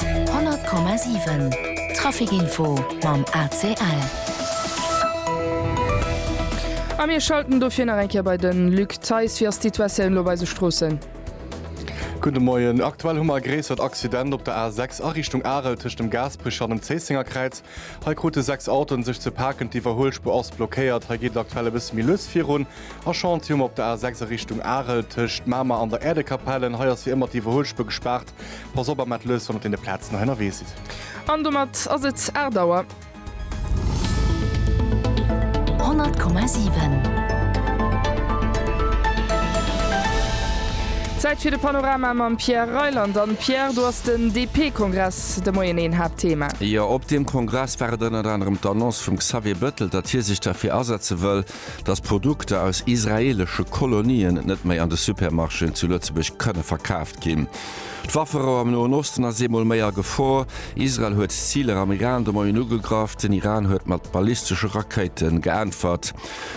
100,7 Traficinfo mam ACL. A mir schalten dofir nach eng Kéier bei de Luc Theis. Wéi ass d'Situatioun elo bei eise Stroossen? Gudde Moien. Aktuell hu mer e gréissert Accident op der A6 a Richtung Arel tëscht dem Gaasperech an dem Zéisséngerkräiz. Hei krute sechs Autoen sech ze paken. D'Iwwerhuelspuer ass blockéiert. Hei geet et aktuell e bësse méi lues virun. Aschantium op der A 6 a Richtung Arel tëscht Mamer an der Äerdekapellen. Hei ass fir ëmmer d'Iwwerhuelspuer gespaart. Pass op a mellt lues wann et deene Plazen nach ënnerwee sidd. An domat ass et 8 Auer. 100,7. Zäit fir de Panorama mam Pierre Reyland. An Pierre, do ass den DP-Kongress de Moien een Haaptthema. Jo, op deem Kongress war et ënnert anerem d'Annonce vum Xavier Bettel, datt hie sech derfir asetze wëll, dass Produkter aus israeelesche Kolonien net méi an de Supermarchéen zu Lëtzebuerg kënne verkaaft ginn. D'Wafferouh am Noen Osten ass eemol méi a Gefor. Israel huet Ziler am Iran de Moien ugegraff. Den Iran huet mat ballistesche Rakéite geäntwert.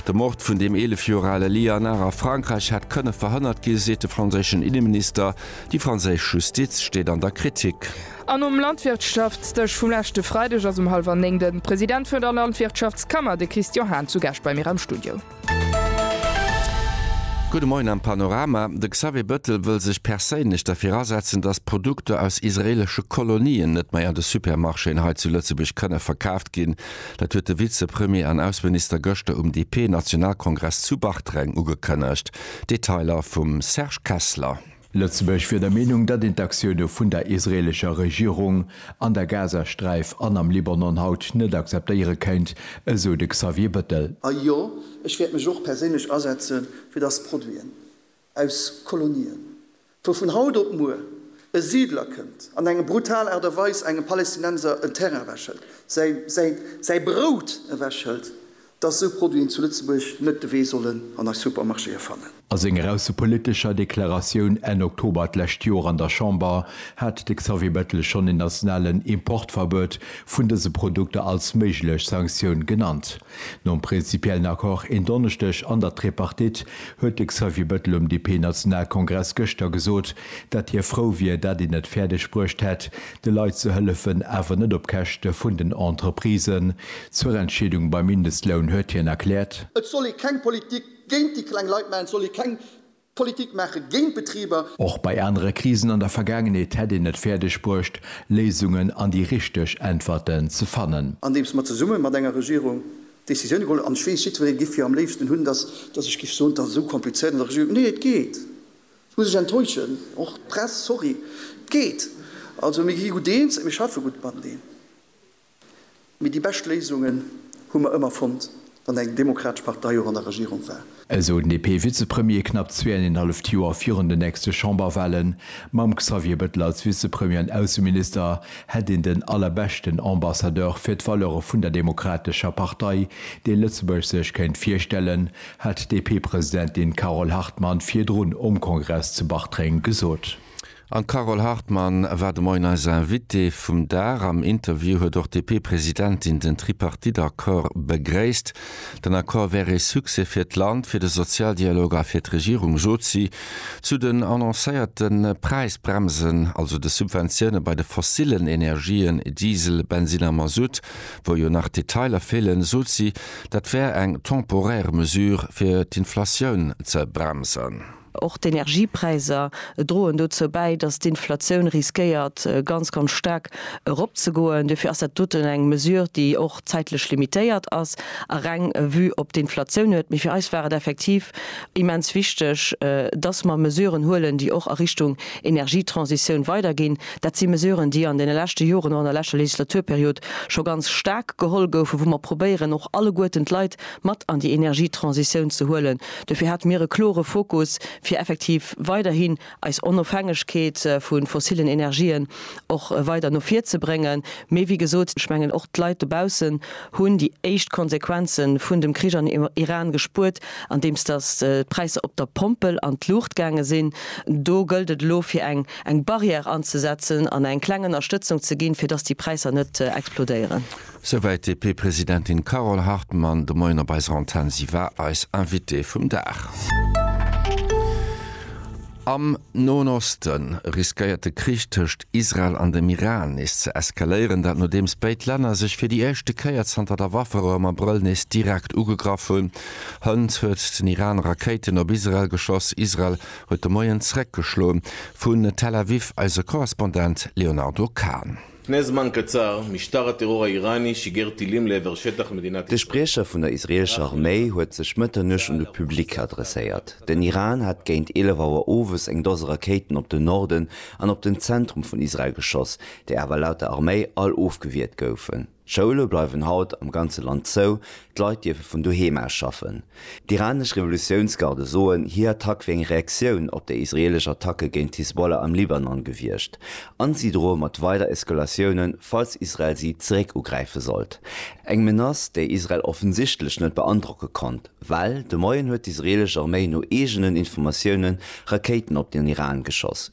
De Mord vun deem 11 Joer ale Lianar a Frankräich hätt kënne verhënnert ginn, seet de franséischen Inneminister. Déi franséisch Justiz steet an der Kritik. An um Landwirtschaftsdësch vum leschte Freideg ass um hallwer néng de President vun der Landwirtschaftskammer, de Christian Hahn, zu Gaascht bei mir am Studio. Gudde Moien am Panorama. De Xavier Bëttel wëll sech perséinlech derfir asetzen, datt Produkter aus israeelesche Kolonien net méi an de Supermarchéen hei zu Lëtzebuerg kënne verkaaft ginn. Dat huet de Vizepremier an Ausseminister gëschter um DP-Nationalkongress zu Bartreng ugekënnegt. Detailer vum Serge Kessler. Lëtzebuerg wier der Meenung, datt een d'Aktioune vun der israeelescher Regierung an der Gazasträif an am Libanon haut net akzeptéiere kéint, esou de Xavier Bettel. A jo, ech wäert mech och perséinlech asetze fir datt Produiten aus Kolonien, wou vun haut op muer e Siidler kënnt an eng brutal Aart a Weis engem Palestinenser en Terrain ewechhëlt, säi Brout ewechhëlt, dass esou Produiten zu Lëtzebuerg net de Wee sollen an eis Supermarchéë fannen. A senger aussepolitescher Deklaratioun Enn Oktober d'lescht Joer an der Chamber hat de Xavier Bettel schonn en nationalen Importverbuet vun dëse Produkter als méiglech Sanktioun genannt. Nom prinzipiellen Accord en Donneschdeg an der Tripartite huet de Xavier Bettel um DP-Nationalkongress gëschter gesot, dat hie frou wier, dat een et fäerdeg bruecht hätt, de Leit ze hëllefen, awer net op Käschte vun den Entreprisen. Zur Entscheedung beim Mindestloun huet hien erkläert. Et soll ee keng Politik géint déi kleng Leit maachen, et soll ee keng Politik maache géint d'Betriber. Och bei anere Krisen an der Vergaangenheet hätt een et fäerdeg bruecht, Léisungen an déi richteg Äntwerten ze fannen. Andeems mer zesumme mat enger Regierung Decisioune geholl hunn, an ech weess, jiddweree géif jo am léifsten hunn, datt ech géif soen, et ass esou komplizéiert an der Regierung. Nee, et geet. Muss ech enttäuschen, och d'Press, sorry. Et geet. Also mir gi gutt eens, mir schaffe gutt mateneen. Mee déi bescht Léisungen hu mer ëmmer fonnt, wann eng demokratesch Partei och an der Regierung war. Esou den DP-Vizepremier knapp zweeënenhalleft Joer virun den nächste Chamberwahlen. Mam Xavier Bettel als Vizepremier an Ausseminister hätt een den allerbeschten Ambassadeur fir d'Valeure vun der Demokratescher Partei, dee Lëtzebuerg sech kéint virstellen. hat d'DP-Presidentin Carole Hartmann virdrun um Kongress zu Bartreng gesot. An d'Carole Hartmann war de Moien eis Invitée vum Dag. Am Interview huet och d'DP-Presidentin den Tripartite-Accord begréisst. Den Accord wär ee Succès fir d'Land, fir de Sozialdialog a fir d'Regierung, sot si. Zu den annoncéierte Präisbremsen, also de Subventioune bei de fossillen Energien, Diesel, Bensinn a Mazout, wou jo nach d'Detailer feelen, sot si, Dat wär eng temporaire Mesure, fir d'Inflatioun ze bremsen. Och d'Energiepräisser droen dozou bäi, datt d'Inflatioun riskéiert, ganz, ganz staark eropzegoen. Duerfir ass dat doten eng Mesure, déi och zäitlech limitéiert ass a reng Vue op d'Inflatioun huet. Mee fir eis war et effektiv immens wichteg, datt mer Mesuren huelen, déi och a Richtung Energietransitioun weiderginn. Dat si Mesuren, déi an deene leschte Joren, och an der leschter Legislaturperiod, scho ganz staark geholl goufen, wou mer probéieren och alleguerten d'Leit mat an déi Energietransitioun ze huelen. Dofir hate mir e klore Fokus, fir effektiv weiderhin eis Onofhängegkeet vu fossillen Energien och weider no vir ze bréngen. Mee wéi gesot, ech mengen, och d'Leit dobaussen hunn déi éischt Konsequenze vun dem Krich an Iran gespuert, andeems datt d'Präisser op der Pompel an d'Luucht gaange sinn. Do gëllt et elo, fir eng eng Barrière anzesetzen an eng kleng Ënnerstëtzung ze ginn, fir dass déi Präisser net explodéieren. Souwäit d'DP-Presidentin Carole Hartmann de Moien op eiser Antenn. Si war eis Invitée vum Dag. Am Noen Oste riskéiert de Krich tëscht Israel an dem Iran nees ze eskaléieren. Dat nodeems béid Länner sech fir déi éischte Kéier zanter der Wafferou am Abrëll nees direkt ugegraff hunn. Hënt huet den Iran Rakéiten op Israel geschoss. Israel huet de Moien zeréckgeschloe vun Tel Aviv eise Korrespondent Léonardo Kahn. De Spriecher vun der israeelescher Arméi huet sech Mëtternuecht un de Public adresséiert. Den Iran hat géint 11 Auer owes eng Dose Rakéiten op den Norden an op den Zentrum vun Israel geschoss, déi awer laut der Arméi all ofgewiert goufen. D'Schoule bleiwen haut am ganze Land zou, d'Leit dierfe vun doheem aus schaffen. D'iranesch Revolutiounsgarde soen, hir Attack wier eng Reaktioun op déi israeelesch Attacke géint d'Hisbollah am Libanon gewiescht, a si droe mat weider Eskalatioune falls Israel si zeréck ugräife sollt. Eng Menace, déi Israel offensichtlech net beandrocke konnt, well de Moien huet d'israeelesch Arméi no eegenen Informatiounen Rakéiten op den Iran geschoss.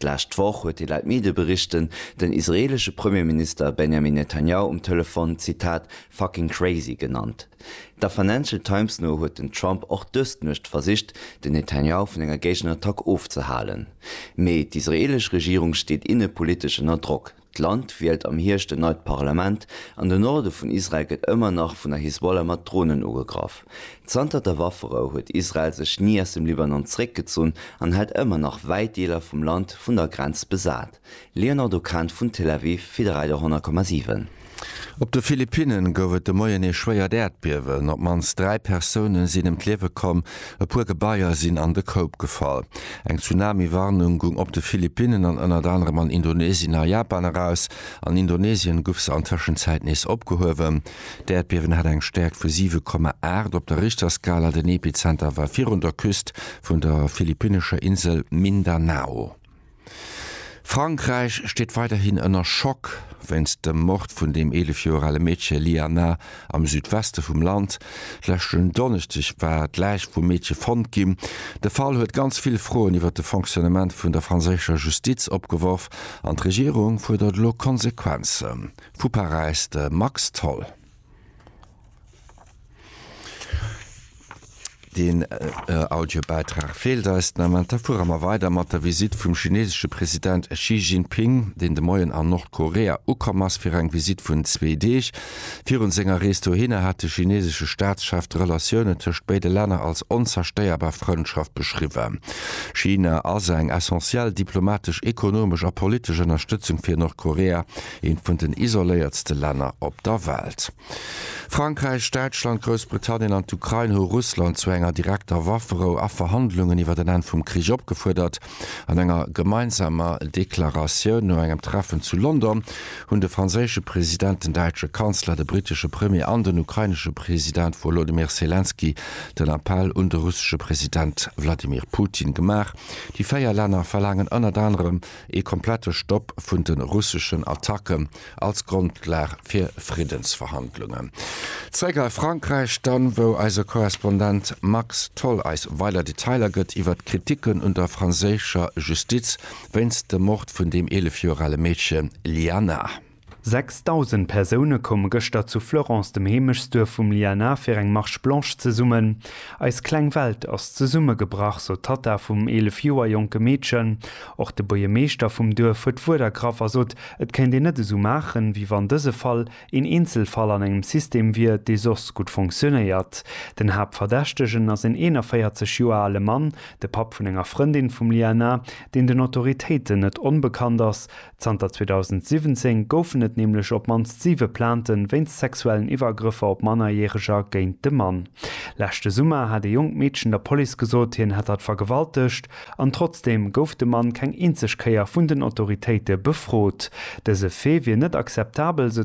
D'lescht Woch huet hie laut Medieberichten den israeelesche Premierminister Benjamin Netanjahu um Telefon, Zitat, fucking crazy genannt. Der Financial Times no huet den Trump och dës Nuecht versicht, den Netanjahu vun enger Géigenattack ofzehalen. Mee d'israeelesch Regierung steet innepolitesch ënner Drock. D'Land wielt am Hierscht en neit Parlament an de Norde vun Israel gëtt ëmmer nach vun der Hisbollah mat Dronen ugegraff. Zanter der Wafferou huet Israel sech ni aus dem Libanon zeréckgezunn an hält ëmmer nach wäit Deeler vum Land vun der Grenz besat. Léonardo Kahn vun Tel Aviv fir de Ride 100,7. Op de Philippinnen gouf et de Moien ee schwéiert Äerdbiewen. Op d'mannst dräi Persoune sinn ëm d'Liewe komm, E puer Gebaier sinn an de Koup gefall. Eng Tsunami-Warnung gung op de Philippinnen an ënnert anerem an Indonesien a Japan eraus. An Indonesien guff se an Tëschenzäit nees opgehuewen. D'Äerdbiewen hat eng Stäerkt vu 7,8 op der Richterskala. Den Epizenter war virun der Küst vun der philippinnescher Insel Mindanao. Frankräich steet weiderhin ënner Schock wéinst dem Mord vun dem 11 Joer ale Meedche Liana am Südweste vum Land. Leschten Donneschdeg war d'Läich vum Meedche fonnt ginn. De Fall huet ganz vill Froen iwwer de Fonctionnement vun der franséischer Justiz opgeworf an d'Regierung fuerdert elo Konsequenzen. Vu Paräis de Max Tholl. Deen Audiobäitrag feelt eis den Ament. Da fuere mer weider mat der Visitt vum chinesesche President Xi Jinping, deen de Moien an Nordkorea ukomm ass fir eng Visitt vun zwee Deeg. Virun senger Rees dohinner hat de chinesesche Staatschef d'Relatiounen tëscht béide Länner als onzerstéierbar Frëndschaft beschriwwen. China ass eng essentiell diplomatesch, ekonomesch a politesch Ënnerstëtzung fir Nordkorea, eent vun den isoléiertste Länner op der Welt. Frankräich, Däitschland, Groussbritannien an d'Ukrain hu Russland zu enger direkter Wafferou a Verhandlungen iwwer en Enn vum Krich opgefuerdert. An enger gemeinsamer Deklaratioun no engem Treffen zu London hunn de franséische President, den däitsche Kanzler, de brittesche Premier an den ukrainesche President Wolodymyr Selenskyj den Appell un de russesche President Wladimir Putin gemaach. Déi véier Länner verlaangen ënnert anerem, Ee komplette Stopp vun de russeschen Attacke als Grondlag fir Friddensverhandlungen. Zeréck a Frankräich dann, wou eise Korrespondent Max Tholl eis weider Detailer gëtt iwwert d'Kriticken un der franséischer Justiz wéinst dem Mord vun deem 11 Joer ale Meedche Lyana. 6000 Persoune koume gëschter zu Fleurance, dem Heemechtsduerf vum Liana, fir eng Marche Blanche zesummen. Eis kleng Welt ass zesummegebrach, sou d'Tatta vum 11 Joer jonke Meedchen. Och de Buerjemeeschter vum Duerf huet d'Wuert ergraff a sot, et kéint een net esou maachen, wéi wann dëse Fall een Eenzelfall an engem System wier, dee soss gutt funktionéiert. Den Haaptverdächtegen ass een 41 Joer ale Mann, de Papp vun enger Frëndin vum Liana, deen den Autoritéiten net onbekannt ass. Zanter 2017 goufen et nämlech op d'mannst siwe Plainte wéinst sexuellen Iwwergrëffer op Mannerjäreger géint de Mann. Leschte Summer hat ee jonkt Meedchen der Police gesot, hien hätt hatt vergewaltegt. An trotzdeem gouf de Mann keng eenzeg Kéier vun den Autoritéite befrot. Dëse Fait wier net akzeptabel, sou